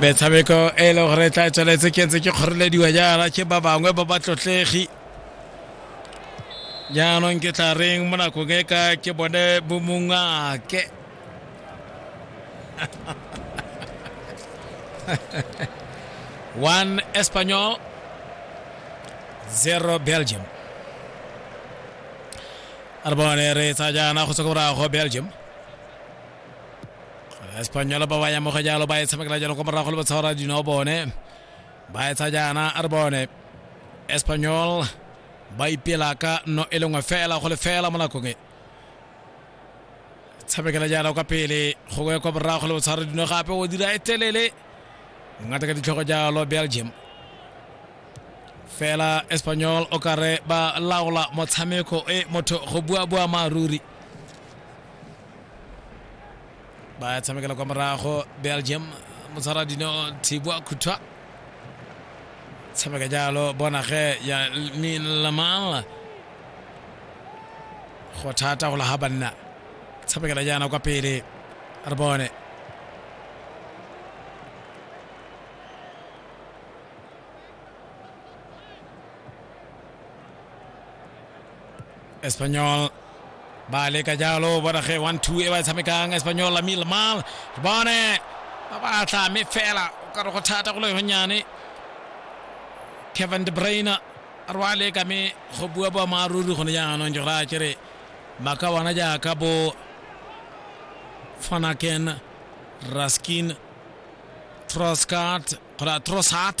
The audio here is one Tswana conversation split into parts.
metshameko e e leng gore e tla tsweletse ke ntse ke kgorelediwa jaana ke ba bangwe ba batlotlegi jaanong ke tla reng mo nakong e ka ke bone bomongake one espanol zero belgium a re bone re tsa jaana go tswa ko morago belgium espanyola ba ba ya moga jalo ba e tshamekela jalo kwa morago le batshwara dinao bone ba etsa jaana a re bone espanyol ba ipela ka no e lengwe fela go le fela mo nakong e tshamekela jaana kwa pele gongwe kwa morago le botshwara dino gape o dira e telele ngata ka ditlhogo jalo belgium fela espanyol o kare ba laola motshameko e motho go bua bua maaruri ba ya tshamekela kwa morago belgium motshwara dino thibwa khuthwa tshameka jalo bona ge ya lamal go thata go laga banna tshamekela jaana kwa pele re bone espanyol ba leka jalo bona ge one two e ba e tshamekang espanyol la mil mal re bone ba batla mme fela o ka re go thata go le gonyane kevin de brainer a re wa leka mme go bua boammaaruri gone jaanong jora a kere ba ka bona jaaka bo fanaken raskin troscart kgotsa trosart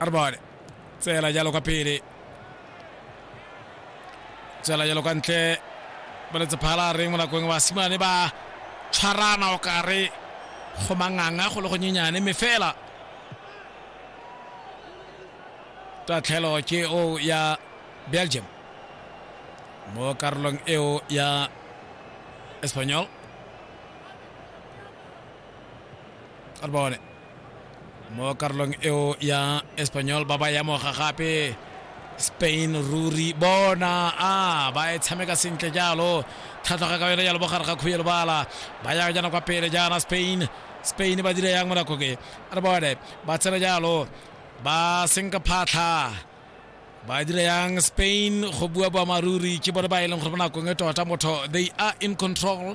arbale tsela jalo kwa pele tsela jalo kwa ntle boletse phala reng mo nakong wa simane ba tshwarana o kare go manganga go le go nyenyane mme fela tatlhelo ke o ya belgium mo karolong eo ya espanyol arbone mo karolong eo ya espanyol ba ba yamoga gape spain ruri bona a ba e tshameka sentle jalo thatloga ka yone jalo bogare ga khuye lebala ba ya jana kwa pele jana spain spain ba dira yang mo nako ke re bone ba tsena jalo ba senka phatlha ba dira yang spain go bua boamaruri ke bone ba e leng gore mo nakong e tota motho they are in control